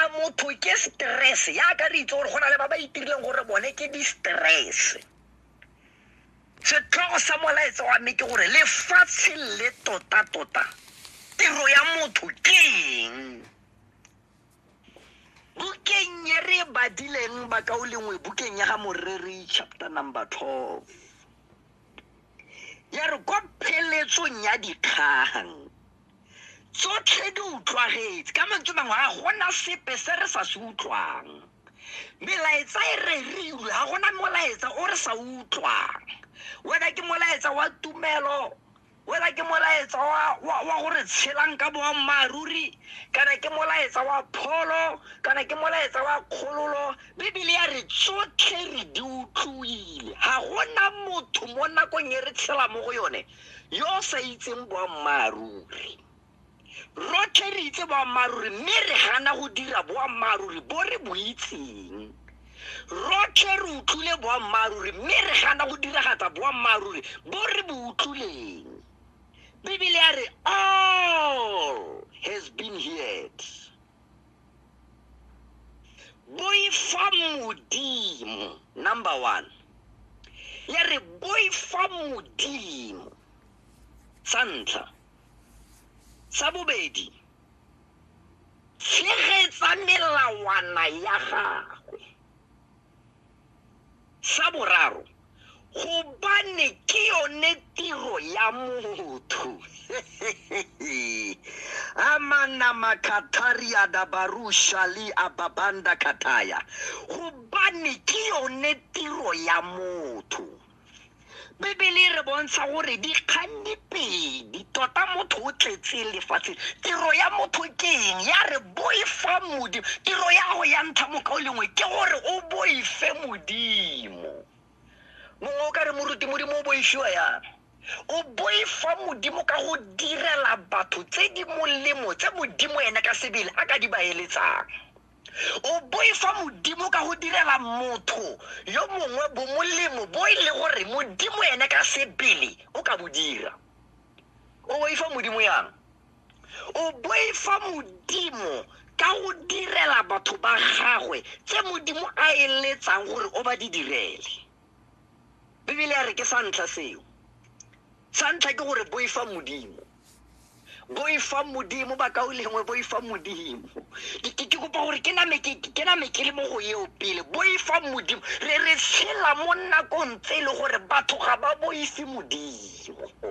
a motho ke stress yaka re itse gore go na le ba ba itirileng gore bone ke di-stress setlhogo sa molaetsa wa mme ke gore lefatshe le tota-tota tiro ya motho ke eng bukeng e re badileng bakao lengwe bukeng ya ga moreri chapter number 12 ya re kwa pheletsong ya dikgang tsotlhe di utlwagetse ka mantswe mangwe ga gona sepe se re sa se utlwang melaetsa e re reiwe ga gona molaetsa o re sa utlwang wena ke molaetsa wa tumelo wena ke molaetsa wa, wa, wa gore tshelang ka boammaaruri kana ke molaetsa wa pholo kana ke molaetsa wa kgololo bibele ya re tsotlhe re di utlwile ga gona motho mo nakong e re tshela mo go yone yo o sa itseng boammaaruri rotlhe re itse boammaaruri mme re gana go dira boammaaruri bo re bo itseng rotlhe re utlwile boammaaruri mme re gana go diragatsa boammaaruri bo re bo utlwileng bibele ya re all has been heard boifa modimo number one le re boifa modimo sa ntlha sa bobedi tshegetsa melawana ya gagwe Sa boraro, gobane ke yone tiro ya motho amana makatharia da barusha le ababanda kataya gobane ke yone tiro ya motho bebele e re bontsha gore dikganni pedi tota motho o tletse lefatsheng tiro ya motho ke eng ya re boifa modimo tiro ya go ya ntlha moka o lengwe ke gore o boife modimo mongwe o ka re moruti modimo o boifiwa yang o boifa modimo ka go direla batho tse di molemo tse modimo ene ka sebele a ka di baeletsang o boifa modimo ka go direla motho yo mongwe bomolemo bo e le gore modimo ene ka sebele o ka bo dira o boifa modimo yang o boifa modimo ka go direla batho ba gagwe tse modimo a eletsang gore o ba di direle bibele ya re ke sa ntlha seo sa ntlha ke gore boifa modimo boifa modimo ba kao lengwe boifa modimo ke kopa gore ke name ke le mo go eo pele boifa modimo re re tshela mo nakong tse e le gore batho ga ba boife modimo segopo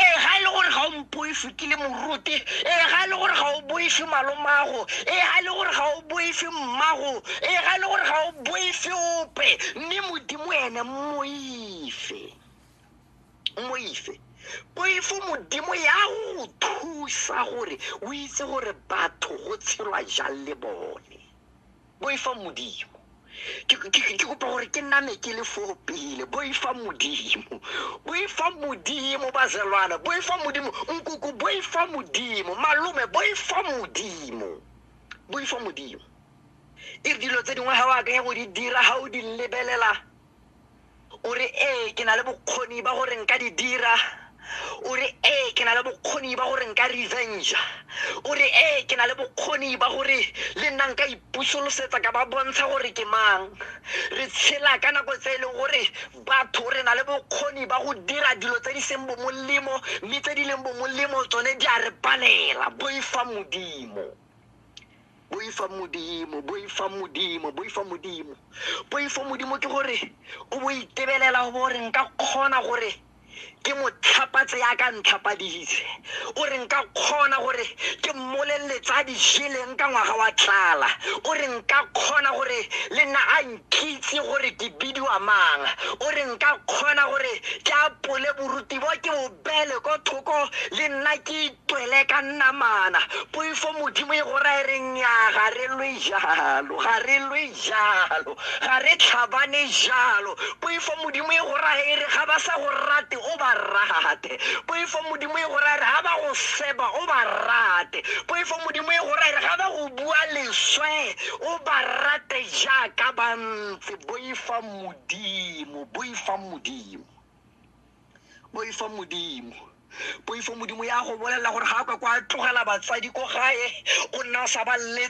ee ga e le gore ga o mpoefe ke le morote ee ga e le gore ga o boefe malomago ee ga e le gore ga o boefe mmago ee ga e le gore ga o boefe ope mme modimo ene moife moife poifo modimo ya go thusa gore o itse gore batho go tshelwa jang le bone boifa modimo ke ke- ke- ke kopa gore ke name ke le foo pele boifa modimo boifa modimo bazelwana boifa modimo nkoko boifa modimo malome boifa modimo boifa modimo e re dilo tse dingwe ga o akanya go di dira ga o di lebelela o re ee ke na le bokgoni ba gore nka di dira o re ee ke na le bokgoni ba gore nka revenge o re ee ke na le bokgoni ba gore le nna nka ipusolosetsa ka ba bontsha gore ke mang re tshela ka nako tse e leng gore batho re na le bokgoni ba go dira dilo tse di seng bomolemo mme tse di leng bomolemo tsone di a re palela boifa modimo boifa modimo boifa modimo boifa modimo boifa modimo ke gore o bo itebelela go bo re nka kgona gore ke mo tlhapatse ya ka ntlhapadise o re nka kgona gore ke mmoleletse a dijeleng ka ngwaga wa tlala o re nka kgona gore le nna a nkitse gore ke bidiwa mang o re nka kgona gore ke apole boruti bo ke bobele ko thoko le nna ke Tswele ka namana. Poifo Modimo e go raya e re nnyaa ga re lwe jalo, ga re lwe jalo, ga re tlhabane jalo. Poifo Modimo e go raya e re ga ba sa go rate o ba rate. Poifo Modimo e go raya e re ga ba go seba o ba rate. Poifo Modimo e go raya e re ga ba go bua leswe o ba rate jaaka ba ntse. Boifa Modimo, boifa Modimo, boifa Modimo. poifo modimo ya go bolelela gore ga a ka kwa tlogela batsadi ko gae o nna o sa ba